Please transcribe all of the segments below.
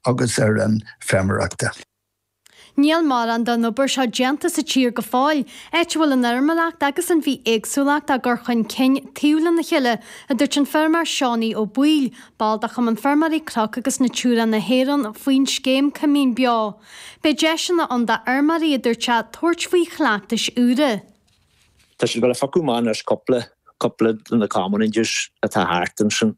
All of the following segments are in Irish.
agus ar an bhfeirmeoireachta. Níl mórán den obair seo déanta sa tír go fóill, áit a bhfuil an fheirmeoireacht agus an bhithéagsúlacht á gcur chun cinn taobh lena chéile, a dúirt an feirmeoir Seánie Ó Baoill, ball de Chumann Feirmeoirí Cnoc agus Natura na hÉireann, faoin scéim 'Coimín Beo'. Beidh deiseanna ann d'fheirmeoirí, a dúirt sé, tabhairt faoi chleachtais úra. Tá siad ag gabháil a phiocadh amach anois, cúpla, cúpla de na commonages atá thart ansin.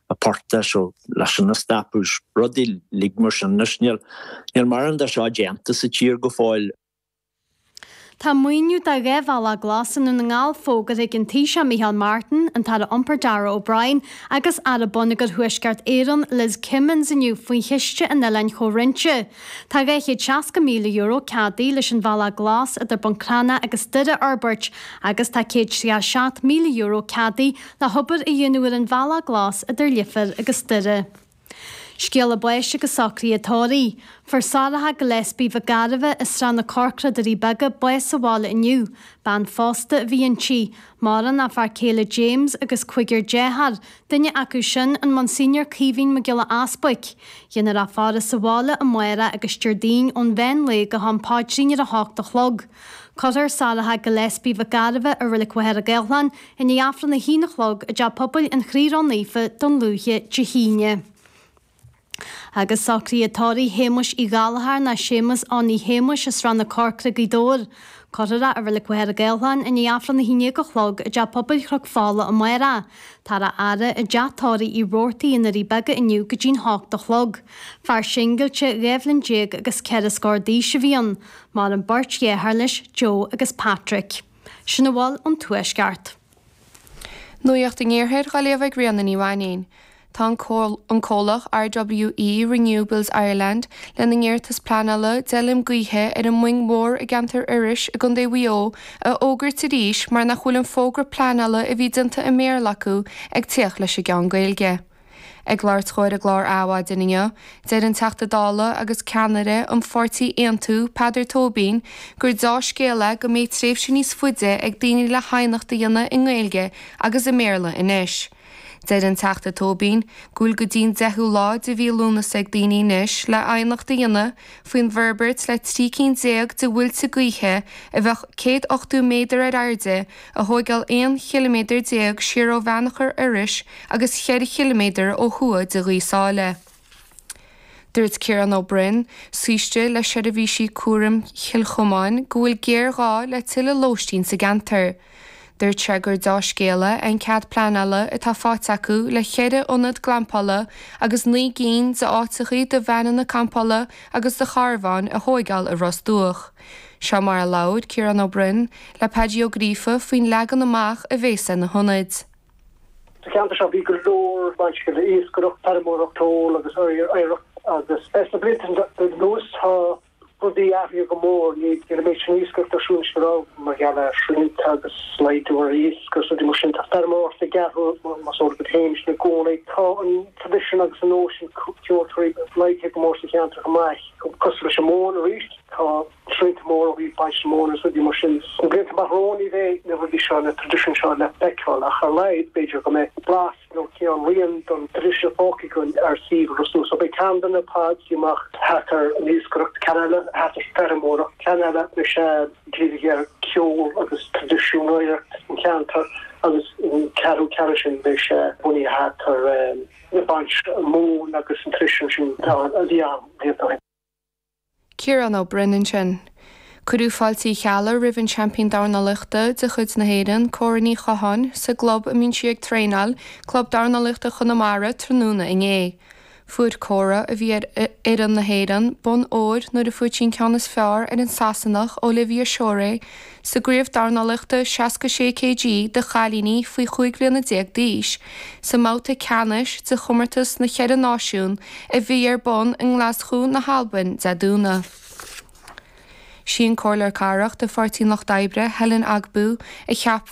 i bpáirt de seo leis an an stoc is rudaí uilig mar sin anois. Níl mórán de seo déanta sa tír go fóill. Tá maoiniú do dhá bhealach glas i nDún na nGall fógartha ag an Taoiseach Micheál Martin, an tAire Iompair Darragh O'Brien agus Aire Bonneagair Thuaisceart Éireann Liz Kimmins inniu faoi Chiste an Oileáin Chomhroinnte. Tá €260,000 ceadaithe leis an Bhealach Glas idir Buncrana agus Doire a fhorbairt agus tá €107,000 ceadaithe le hobair a dhéanamh ar an Bhealach Glas idir Leifear agus Doire. Scéala báis agus socruithe tórraimh. Fuair Sorcha Gillespie Mhic Gairbheith i Srath na Corcra Doirí Beaga bás sa bhaile inniu, bean phósta a bhí inti, maireann a fear céile James agus cúigear deartháir, duine acu sin an Monsignor Caoimhín Mac Giolla Easbuic, déanfar í a fhaire sa bhaile amárach agus Déardaoin ón mheán lae go ham paidrín ar a hocht a chlog. Cuirfear Sorcha Gillespie Mhic Gairbheith i Reilig Mhachaire Gathlán i ndiaidh Aifreann a haon a chlog i dTeach Pobail an Chroí Ró-Naofa Dún Lúiche Dé hAoine. Agus socruithe tórraimh Shéamuis Uí Ghallchóir ná Séamus Owenie Shéamuis i Srath na Corcra, Gaoth Dobhair. Cuirfear é i Reilig Mhachaire Gathlán i ndiaidh Aifreann a haon dhéag a chlog i dTeach Pobail Chnoc Fola amárach, táthar á fhaire i dTeach Tórraimh Uí Rabhartaigh i nDoirí Beaga inniu go dtí'n hocht a chlog. Fear singilte, dhá bhliain déag agus ceithre scór d'aois a bhí ann. Maireann beirt dheartháir leis, Joe agus Patrick. Sin a bhfuil ón Tuaisceart. Nuaíocht an Iarthair dhá léamh ag Ríona Ní Mhainnín. Tá an comhlacht RWE Renewables Ireland lena n-iarratas pleanála d'fheilm gaoithe ar an Muing Mhór i gceantar Iorrais i gContae Mhaigh Eo a fhógairt arís mar nach bhfuil an fógra pleanála a bhí déanta i mBéarla acu ag tíocht leis an gceann Gaeilge. Ag labhairt dhó ar an gclár Adhmhaidin inniu, deir an Teachta Dála agus ceannaire an pháirtí Aontú, Peadar Tóibín, gur deá-scéal é go mbeidh tréimhse níos faide ag daoine le haighneacht a dhéanamh i nGaeilge agus i mBéarla anois. Deir an Teachta Tóibín go bhfuil go dtí'n deichiú lá de mhí Lúnasa ag daoine anois le haighneacht a dhéanamh, faoin bhforbairt le trí cinn déag de mhuilte gaoithe a bheadh céad ochtó méadar ar airde a thóigeáil aon chiliméadar déag siar ó Bheannchar Iorrais agus cheithre chiliméadar ó thuaidh de Ghaoth Sáile. Dúirt Ciarán Ó Broin, Saoiste le Seirbhísí Cúraim Chill Chomáin go bhfuil géarghá le tuilleadh lóistín sa gceantar. Dúirt sé gur deá-scéala é an cead pleanála atá faighte acu le ceithre ionad glampála agus naoi gcinn d'áiteachaí do veaineanna campála agus do charbháin a thóigeáil i Ros Dumhach. Seo mar a labhair Ciarán Ó Broin le Peaidí Ó Gríofa faoin leagan amach a bhéas ar na hionaid. Sa cheantar seo bhí go leor bainteach le iascaireacht, feirmeoireacht, ceol agus oidhreacht agus sna blianta anuas tá. Rudaí athraithe go mór, níl an méid sin iascaireacht ar siúl is mar a raibh mar gheall ar shrianta agus laghdú ar iasc, rudaí mar sin. Tá feirmeoireacht ag athrú mar is eol dhuit féin sin i gcónaí. Tá an traidisiún agus an nós sin ceoltóirí laghdaithe go mór sa cheantar chomh maith. Cosúil leis an mhóin arís, tá srianta móra ó thaobh baint na móna agus rudaí mar sin. Sna blianta amach romhainn ní bheidh na rudaí seo, na traidisiúin seo le feiceáil ach ar a laghad b'fhéidir go mbeidh blas nó cineál rian den traidisiún fágtha againn ar shuíomh Ros Dumhach. Beidh ceann de na pods déanta amach thart ar an iascaireacht, ceann eile thart ar feirmeoireacht, ceann eile beidh sé dírithe ar cheol agus traidisiún oidhreacht an cheantair agus an ceathrú ceann sin beidh sé bunaithe thart ar an baint mhóin agus an traidisiún sin a bhí ann blianta ó shin. Ciarán Ó Broin ansin. Cuireadh fáiltí geala roimh an seaimpín dornálaíochta de chuid na hÉireann, Cora Ní Chatháin, sa gclub a mbíonn sí ag traenáil, Club Dornálaíochta Chonamara, tráthnóna inné. Fuair Cora, a bhí ar fhoireann na hÉireann, bonn óir nuair a fuair sí an ceann is fearr ar an Sasanach Olivia Shorey Sa gcraobh dornálaíochta 66 kg do chailíní faoi chúig bhliana déag d'aois, sa mbabhta ceannais de chomórtas na Cheithre Náisiún a bhí ar bun i nGlaschú na hAlbain Dé Domhnaigh. Sí an Comhairleoir Cathrach de Pháirtí an Lucht Oibre, Helen Ogbu, a cheap.